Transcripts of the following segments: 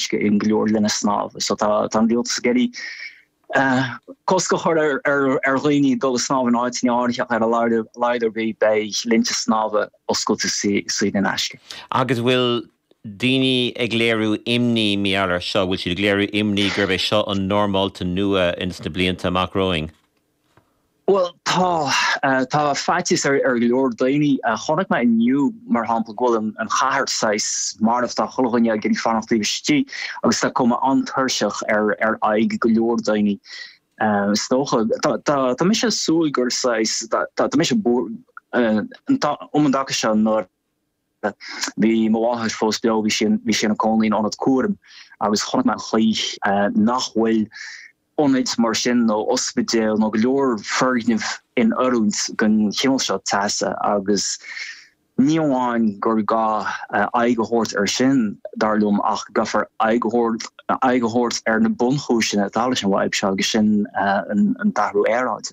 uisce uisce go leor lena snámh. So tá an rialtas ag iarraidh cosc a chur ar dhaoine dul ag snámh in áiteanna áirithe ar a laghad ar bith beidh linnte snámha oscailte saor in aisce. Agus bhfuil daoine ag léiriú imní mar gheall air seo? Bhfuil siad ag léiriú imní gurb é seo an normálta nua sna blianta amach romhainn? Bhuel, tá. Tá faitíos ar go leor daoine. Chonaic mé inniu, mar shampla, go bhfuil an chathair saghas marbh. Tá chuile dhuine ag iarraidh fanacht taobh istigh agus tá cuma an-tuirseach ar aghaidh go leor daoine, is dócha. Tá mise ag súil gur saghas, tá mise, um an dtaca seo nuair. Bhí mo mháthair fós beo, bhí sí bhí sí ina cónaí in ionad cúraim agus chonaic mé an chaoi nach bhfuil ionaid mar sin nó ospidéal nó go leor foirgneamh in oiriúint don chineál seo teasa agus ní amháin gur gá aghaidh a thabhairt air sin, dar liom, ach gcaithfear aghaidh a thabhairt aghaidh a thabhairt ar na bunchúiseanna atá leis an bhfadhb seo agus sin an t-athrú aeráide.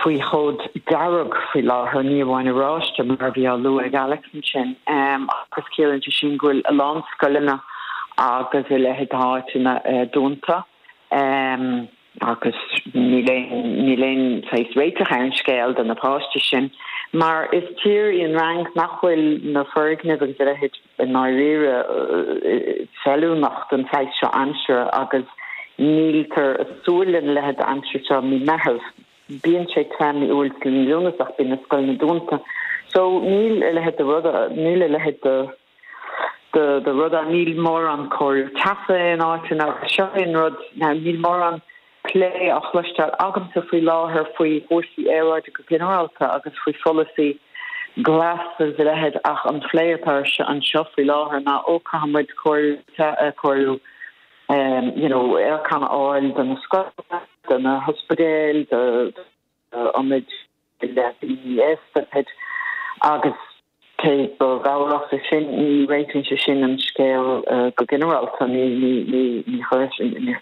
faoi chód dearg faoi láthair, ní amháin oráiste mar a bhí á lua ag Alex ansin, agus ciallaíonn sé sin go bhfuil a lán scoileanna agus a leithéid d'áiteanna dúnta agus níl níl aon saghas réiteach ar an scéal do na páisti sin mar is tír í an Fhrainc nach bhfuil na foirgnimh agus a leithéid I ndáiríre feiliúnach don saghas seo aimsire agus níltear ag súil lena leithéid d'aimsir seo mí Meitheamh. Bíonn sé te mí Iúil agus mí Lúnasa ach bíonn na scoileanna dúnta so níl a leithéid de rud níl a leithéid de de rud ann. Níl mórán cóiriú teasa in áiteanna agus seo é an rud níl mórán plé á chloisteáil agamsa faoi láthair faoi chúrsaí aeráide go ginearálta agus faoi pholasaí glas is a leithéid ach an plé atá ar siúl anseo faoi láthair ná oh caithfidh muid cóiriú cóiriú you know aircon a fháil do na scoileanna, do na hospidéil, do ionaid leanaí aosta, pid. Agus. Cé go gcabhródh sin, ní réitíonn sé sin an scéal go ginearálta,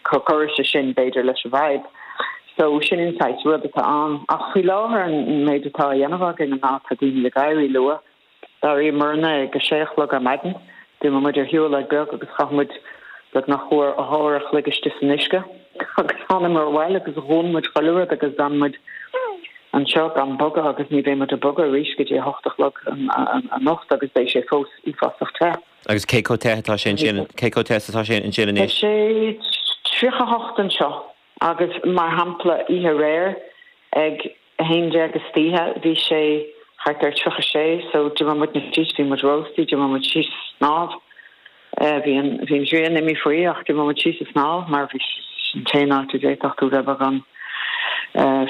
cuireann sé sin, b'fhéidir, leis an bhfadhb. So, sin an saghas rud atá ann. Ach faoi láthair, an méid atá á dhéanamh againn ná tá daoine ag éirí luath, dáiríre, muidne ag a sé a chlog ar maidin, D'imigh muid ar shiúlóid bheag agus chaith muid beagnach uair a chloig istigh san uisce agus tháinig muid abhaile agus dhún muid chuile rud agus d'fhan muid anseo gan bogadh agus ní bheidh muid ag bogadh arís go dtí a hocht a chlog anocht agus beidh sé fós uafásach te. Agus cé chomh te atá sé ansin, cé chomh te is atá sé ansin anois? Tá sé tríocha hocht anseo agus mar shampla oíche aréir ag. 11 istoíche bhí sé thart ar tríocha sé, so d'imigh muidne síos, bhí muid rósta, d'imigh muid síos a snámh, bhí an ghrian imithe faoi ach d'imigh muid síos a snámh mar bhí, sin an t-aon áit a d'fhéadfadh tú bheith beagán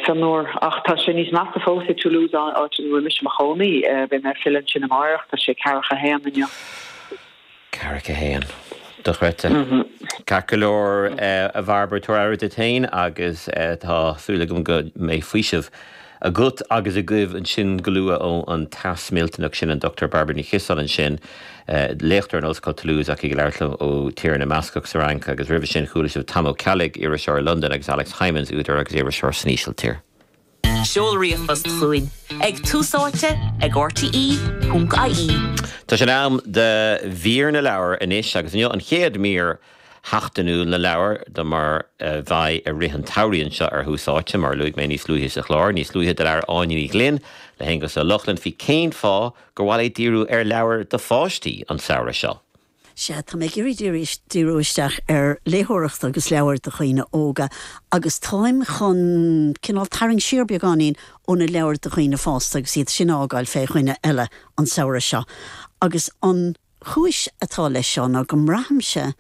fionnuar. Ach tá sé níos measa fós i Toulouse, áit ina bhfuil mise i mo chónaí, beidh mé ag filleadh ansin amárach, tá sé ceathracha a haon inniu. Ceathracha a haon. Dochreidte. Ceart go leor, a Bhairbre, tabhair aire duit féin agus tá súil agam go mbeidh faoiseamh agat agus agaibh ansin go luath ón teas millteanach sin. An Dr. Bairbre Ní Chiosáin ansin, léachtóir in Ollscoil Toulouse ach í ag labhairt liom ó Tír na mBascach sa Fhrainc agus roimhe sin chuala sibh Tom Ó Ceallaigh, iriseoir i Londain agus Alex Hijmans, údar agus iriseoir san Ísiltír. Seol ríomhphost chugainn ag tusaite ag rte.ie. Tá sé in am do mhír na leabhar anois agus inniu an chéad mhír sheachtainiúil na leabhar de mar a bheidh i rith an tsamhraidh anseo ar Thús Áite. Mar a luaigh mé níos luaithe sa chlár, níos luaithe do labhair Áine Ní Ghlinn le hAonghus Ó Lochlainn faoi cén fáth gur mhaith léi díriú ar leabhair do pháistí an samhradh seo. Sea, tá mé ag iarraidh díriú isteach ar léitheoireacht agus leabhair do dhaoine óga agus táim chun cineál tarraingt siar beagáinín ó na leabhair do dhaoine fásta agus iad sin a fhágáil fé dhuine eile an samhradh seo. Agus an chúis atá leis seo ná go mbraithimse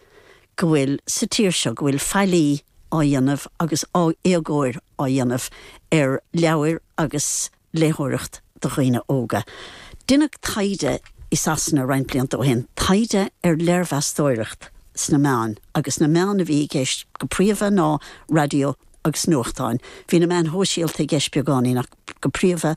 go bhfuil, sa tír seo, go bhfuil faillí á dhéanamh agus éagóir á dhéanamh ar leabhair agus léitheoireacht do dhaoine óga. Deineadh taighde i Sasana roinnt blianta ó shin, taighde ar léirmheastóireacht sna meáin, agus na meáin a bhí i gceist go príomha ná raidió agus nuachtáin. Bhí na meáin shóisialta i gceist beagáinín ach go príomha.